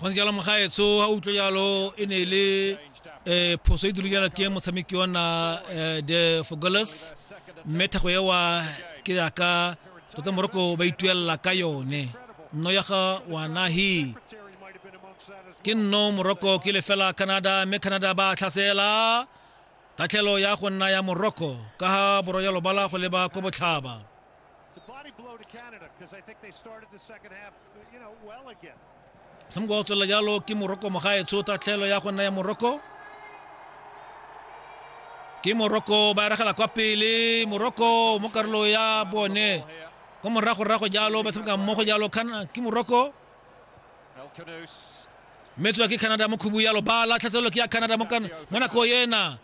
go ntse jalo mogaetso ga utlwe jalo e ne e le um phoso e dule jana teng motshameki wa nna um the fogolas mme thago ewa ke yaka tota moroko ba ituelela ka yone nno ya ga wanahi ke nno moroko ke lefela canada mme canada ba tlhasela tatlhelo ya go nna ya moroko ka ga boroyalo bala go leba ko botlhaba It's a body blow to Canada because I think they started the second half, you know, well again. Some goals to Lajalo, Kim Morocco, Mahaya, Tsuta, Telo, Yakunaya, Morocco. Ke Morocco, Barakala, Kwapili, Morocco, Mokarlo, ya Bone. Como Rajo, Rajo, Yalo, Basamka, Mojo, Yalo, Kan, Kim Morocco. Metsu ya ke Canada mo khubu yalo ba latlhaselelo ke ya Canada mo kana mo nako yena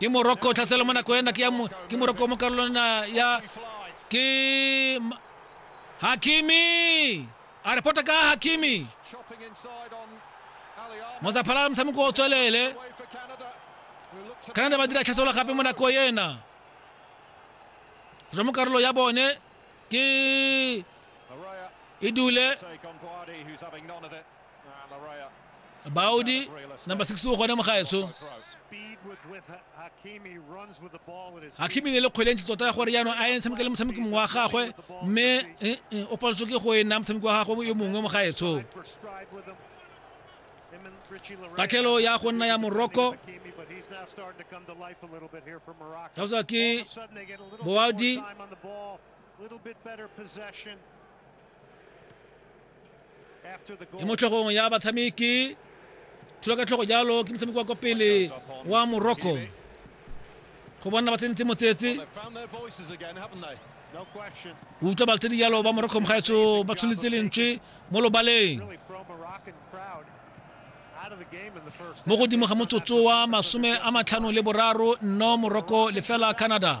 ke moroko tlhaselo mo nako ena ke moroko mo karolong ya ke hakimi a re pota ka hakimi mozaphala la motshameko o tswelele canada ba dira tlhaselo gape mo nako ena go mo karolo ya bone ke e dule Baudi, number 6 o gone mo gaetsho. Hakimi ne le kgwele ntse tota ya gore jaanong a ene tshameka le motshameki mongwe wa gagwe mme eh, eh, o paletswe ke go e nna motshameki wa gagwe yo mongwe mo gaetsho. Katlhelo ya go nna ya Morocco. Tausa ke Boadi. e mo tlhogong ya batshameki tsholo ka tlhogo jalo ke motshameki wa kwa pele wa morocco go bona ba tsentse motsetse utlwa baltedi jalo ba morocco mogaetso ba tshwanetse lentswe mo lobaleng mo godimo ga motsotso wa masome a matlhano le boraro nno morocco lefela canada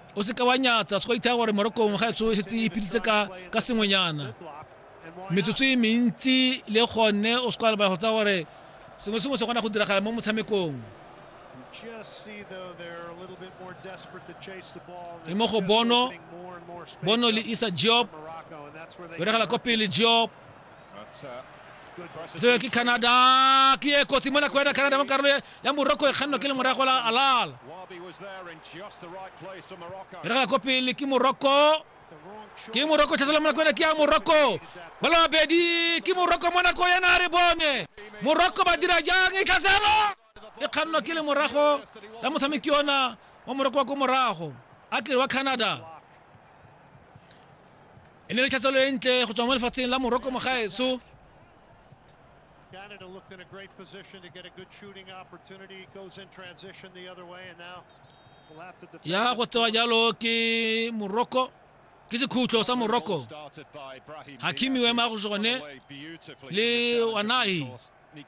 o se ka wa nyatsa se ka ithaya gore morokong ga etso e setse e ipiditse ka ka sengwenyana metsotso e mentsi le gone o se ka lebala go tsa gore sengwe sengwe se kgona go diragala mo motshamekong e mo go bono bono le isa job beregela kwa pele job tseo ke canada ke e kotsi mona kwena canada mo karolo ya morocco e kgannwa ke le morago la alal e rega ko pele ke morocco ke morocco thasela mona kwena ke ya morocco ba le babedi ke morocco mona ko yena a re bone morocco ba dira jang e tlhaselo e kgannwa ke lemorago la motshameki ona wa moroko wa ko morago a kere wa canada e ne le tlhatselo e ntle go tswa mo lefatsheng la moroko mogaetsho Canada looked in a great position to get a good shooting opportunity. Goes in transition the other way, and now we'll have to defend. ya go tsewa jalo ke moroko ke sekhutlo sa moroko Started by Brahim Hakimi Diaz, o ema who's go se gone away beautifully le from the challenge, of wanahi course. Nico